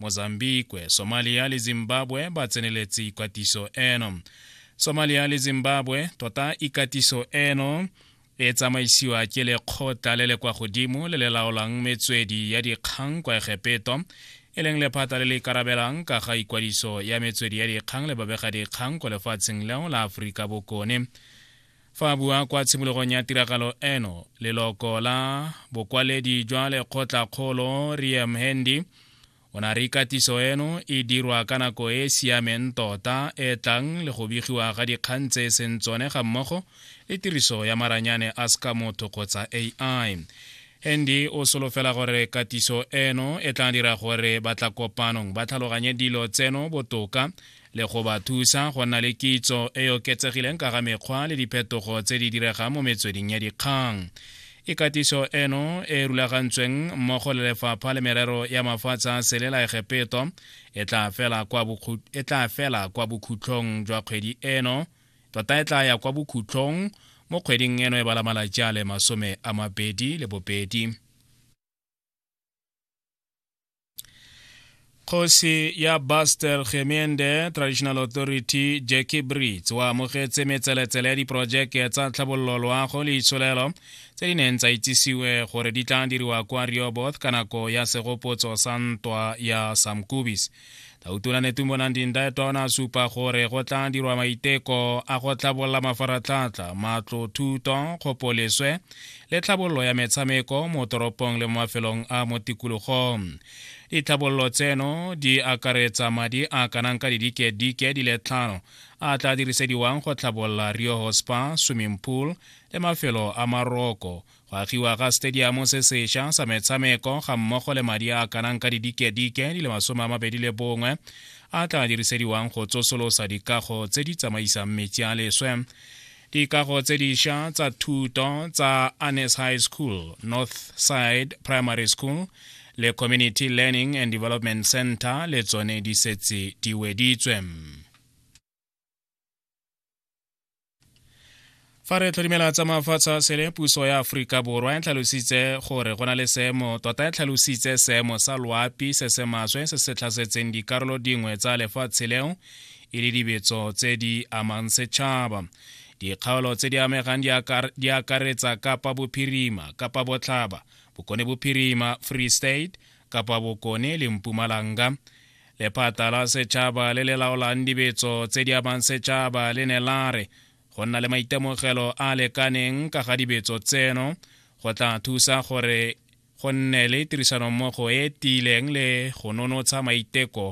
Mozambique, Somalia le Zimbabwe ba tseneletse ikatiso eno. Somalia le Zimbabwe tota ikatiso eno e tsamaisiwa ke lekgotla le le kwa godimo le le laolang metswedi ya dikgang kwa Egepeto e leng lephata le le ikarabelang ka ga ikwadiso ya metswedi ya dikgang le babegadikgang kwa lefatsheng leo la Aforika Bokone. Fa a bua kwa tshimologong ya tiragalo eno, leloko la bokwaledi jwa lekgotlakgolo Ria Mhendi o ne a re ikatiso eno e dirwa ka nako e e siameng tota e tlang le go begiwa ga dikgang tse e seng tsone ga mmogo le tiriso ya maranyane a seka motho kgotsa AI. Hendi o solofela gore katiso eno e tla dira gore batla kopanong ba tlhaloganye dilo tseno botoka le go ba thusa go nna le kitso e e oketsegileng ka ga mekgwa le diphetogo tse di diregang mo metsweding ya dikgang ikatiso eno e rulagantsweng mmogo le lefapha le merero ya mafatshe a sele la egepeto e tla fela kwa e bokhutlhong jwa kgwedi eno tota e tla ya kwa bokhutlhong mo kgweding eno e bala malatsi a le masome a mabedi le bobedi kgosi ya bastel gemende traditional authority jackie brits o amogetse metseletsele ya diporojeke tsa tlhabololo loago le itsholelo tse di neng tsa itsisiwe gore di tla diriwa kwa rioboth ka nako ya segopotso sa ntwa ya samkubis tautona netumbo nandi ndaetwa o ne a supa gore go tla dirwa maiteko a go tlhabolola mafaratlhatlha matlo thuto kgopoleswe le tlhabololo ya metshameko mo toropong le mo mafelong a mo tikologong ditlhabololo tseno di akaretsa madi a kanang ka didike-dike di le tlhano a tla dirisediwang go tlhabolola rioho spa swimming pool le mafelo a maroko go agiwa ga stadiamo se sesha sa metshameko ga mmogo le madi a kanang ka didike-dike di le masome a mabedi le bongwe a tla dirisediwang go tsosolosa dikago tse di tsamaisang metsi a leswe dikago tse disha tsa thuto tsa anes high school north side primary school le community learning and development center le tsone di setse di weditswe fa re tlhodimela tsa mafatshe a sele puso ya aforika borwa e tlhalositse gore go na le seemo tota e tlhalositse seemo sa loapi se se maswe se se tlhasetseng dikarolo dingwe tsa lefatshe leo e le dibetso tse di amang setšhaba dikgaolo tse di amegang di akaretsa kapa bophirima kapa botlhaba bokone bophirima free state kapa bokone le mpumalanga Lephata la setšhaba le le laolang dibetso tse di amang setšhaba le ne la re go nna le maitemogelo a lekaneng ka ga dibetso tseno go tla thusa gore go nne le tirisanommogo e tiileng le go nonotsha maiteko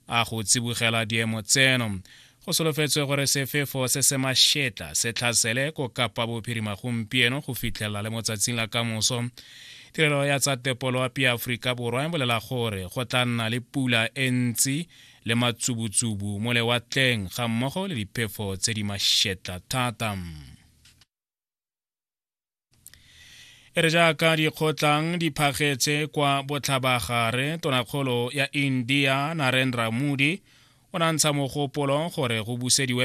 a go tsibogela diemo tseno. go solofetswe gore sefefo se se mašetla se tlhasele ko kapa bophirima gompieno go fitlhelela le mo tsatsing la kamoso tirelo ya tsa tepoloapi ya aforika borwa e bolela gore go tla nna le pula e ntsi le matsubutsubu mo lewatleng ga mmogo le diphefo tse di mašetla thata e re jaaka dikgotlang di phagetse kwa botlhabagare tonakgolo ya india narendra modi o nantsha mogopolo gore go busediwe